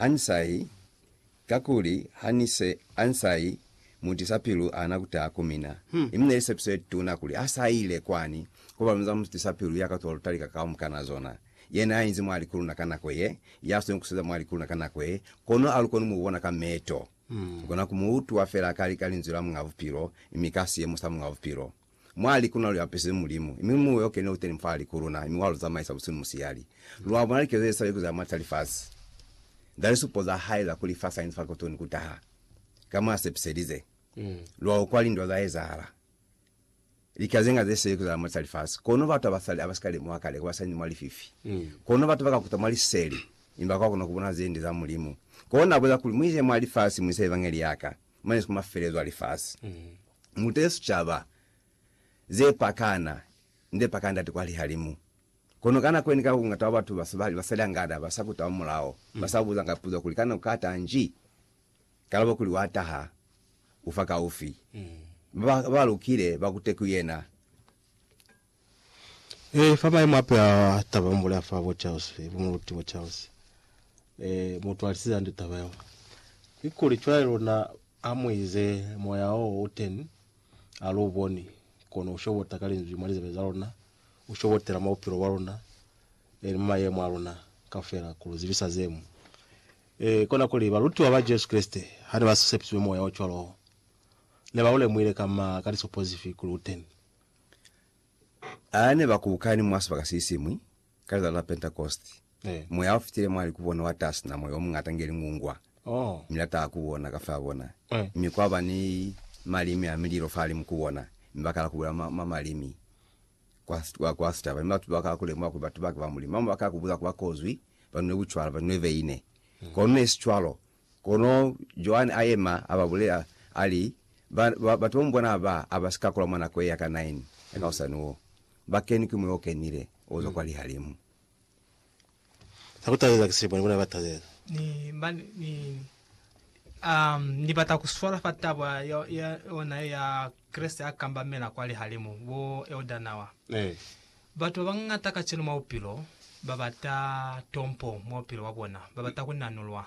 Ansai, kakuli ha ni se Ansai mutisa pilu ana kuta ku mina, imi neli sepiso ye tuna kuli a sa ile kwani, koba luna za mutisa pilu ya ka twa lutali ka kaumukana zona. Yena ya inzi mwali ku luna ka nako ye, ya sweli kuseza mwali ku luna ka nako ye, kono a lu koni mu bona ka meto. Lu kona ku mu utwa fela ka lika linzwi la Muñ'a Bupilo, imi ka siemo sa Muñ'a Bupilo. Mwa likuna lu apesize Mulimu, mi Muya yo Kene u teni fa hali ku luna, mi wa lu zamaisa busihu ni musiyali. Lu a bona likezo ze sa likuzi ha mati a lifasi, za lisupo za Hae za kuli fa sainzi fa kuto ni ku taha, ka mo a sepiselize. Lu a ukwa lindwa za ezahala, lika ze nga ze sa likuzi ha mati a lifasi, kono batu abasali ha ba si ka lemuha kale, ku ba sainzi mwa lififi. Kono batu ba ka kuta mwa liseli, mi ba ka kona ku bona ze nde za Mulimu. Kona a buza kuli, Mu ize mwa lifasi, mu isa Evangeli ya Ka. mane ku mafelelezo a lifasi, muta ye sicaba ze pakana nde paka Ndate kwa lihalimu. Kono ka nako yene ka bungata bwa batu ba sa, ba sa lyangana, ba sa kuta mwa mulao, ba sa buzanga puzo kuli, Kana u ka taha nji? Kalabo kuli, Wa taha, u fa kaufi. Ba ba lukile ba kute ku yena. Ee, fa maemo ape a taba mu bulela fa bo Charles fe, bo Muruti bo Charles, ee, mu twalisize hande taba yeo. Kikuli cwale luna ha mu ize Moya o u teni, ha lu boni, kono u shobota ka Linzwi mwa lizebe za luna, u shobotela mwa bupilo bwa luna, ee, ni mwa maemo a luna kaufela, ku lu zibisa ze mu. Ee, kona kuli, balutiwa ba Jesu Kreste, ha ne ba sepisizwe Moya o cwalo wo, ne ba u lemuhile ka ma, ka lisopo zifi kuli u teni. A ne ba kukani mwa sibaka se siñwi ka lilati la Pentekoste. Eh. Moya u fitile mwali ku bona, wa taha sina moya o muñata inge lingungwa, Oh. mi la taha ku bona kafaa bona. Eh. Mi kwa ba ni malimi a mililo fahalimu ku bona, mi ba kala ku bulela mwa, mwa malimi kwa, kwa, kwa sicaba. Mi batu ba kala ku lemuha kuli batu ba ki ba Mulimu. Ba bamwi ba kala ku buza kuli ba kozwi ba nwile bucwala, ba nwile veine. Kono ne si cwalo. Kono Joani a yema, a ba bulela, a li, Ba, ba, ba to mbona ba, a ba si ka kula mwa nako ye ya ka nine ya ka hosani wo. Ba kenwi ki Moya o Kenile o zwa kwa Lihalimu. Za ku talela ki silipo ni bona ba talela. Ni, ba, ni, ni, um, ni bata ku swala fa taba ya, ya yona ye ya Kreste a kambamela kwa Lihalimu, bo Elder Nawa. Ee. Batu babañata kacenu mwa bupilo babata tompo mwa bupilo bwabona. Babata kunanulwa.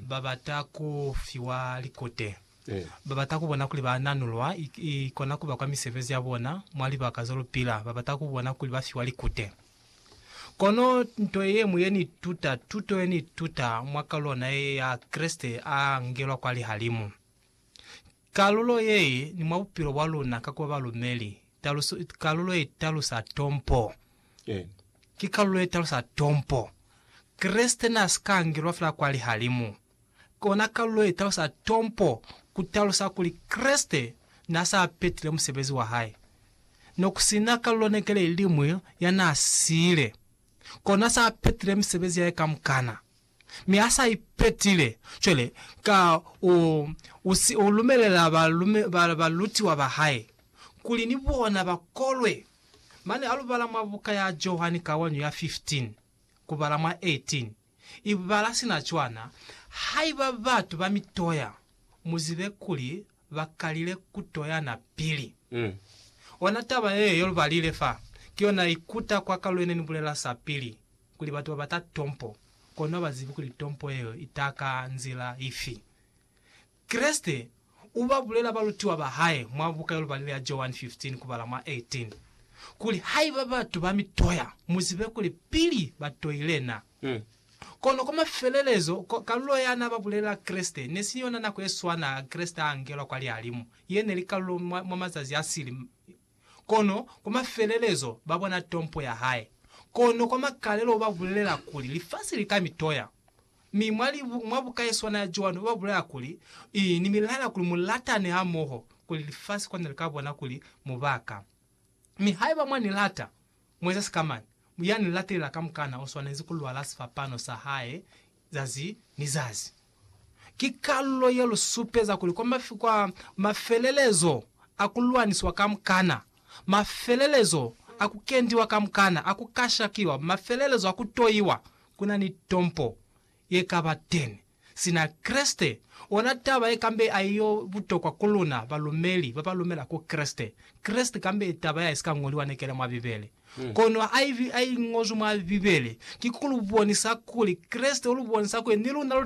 Babata kufiwa likute. Babata kubona kuli bananulwa ikona kuba kwa misebezi yabona mwa libaka zolupila. Babata kubona kuli bafiwa likute. Kono nto yeñwi yeniituta, tuto yeniituta mwa kalulo naye ya Kreste a ngelwa kwa lihalimu, Kalulo ye ni mwa bupilo bwa luna ka kuba balumeli. Taluso, kalulo ye talusa tompo. Ki kalulo ye talusa tompo. Kreste na si ka angelwa fela kwa lihalimu. Kona kalulo ye talusa tompo ku talusa kuli Kreste na sa petile musebezi wa hae. No ku si na kalulo nekele iliñwi ya na siile. Kona sa petile misebezi yae kamukana. mi a sa ipetile. Cwale, ka, u, u si u lumelela ba, ba, balutiwa ba hae kuli ni bona ba kolwe. Mane a lu bala mwa buka ya Johani kawanyo ya 15, ku bala mwa 18. I bala sina cwana, Haiba batu ba mi toya, mu zibe kuli ba kalile ku toyana pili. Ona taba yeo ye lu balile fa, ki yona i kuta kwa ka lwene ni bulela sapili. Kuli batu ba bata tompo, kono ha ba zibi kuli tompo yeo i ta ka nzila ifi. Kreste u ba bulela balutiwa ba hae mwa buka ye lubalile ya Johani 15 kubala mwa 18, kuli, Haiba batu ba mi toya, mu zibe kuli pili ba toile na. Kono kwa mafelelezo, kalulo ya n'a ba bulelela Kreste ne si yona nako ye swana Kreste a angelwa kwa lihalimu, ye ne li kalulo mwa mazazi a sili. Kono kwa mafelelezo ba bona tompo ya hae. Kono kwa makalelo ba bulelela kuli, Lifasi li ka mi toya. Mi mwa libu, mwa buka ye swana ya Joani, ba bulela kuli, I, Ni mi laela kuli mu latane hamoho, kuli lifasi kono li ka bona kuli mu ba ka. Mi haiba mwa ni lata, Mueza sikamana ya ni latelela kamukana u swanezi ku lwala sifapano sa hae zazi ni zazi. Ki kalulo ye lu supeza kuli kwa mafelelezo a ku lwanisiwa kamukana, mafelelezo a ku kendiwa kamukana, a ku kashakiwa, mafelelezo a ku toiwa, ku na ni tompo ye ka ba teni. Sina Kreste, ona taba ye kambe aiyo butokwa ku luna balumeli ba ba lumela ku Kreste. Kreste kambe taba ya isika ñoliwa nekela mwa Bibele. Kono haiba i ñozwi mwa Bibele, ki ku lu bonisa kuli Kreste u lu bonisa kuli ni luna lu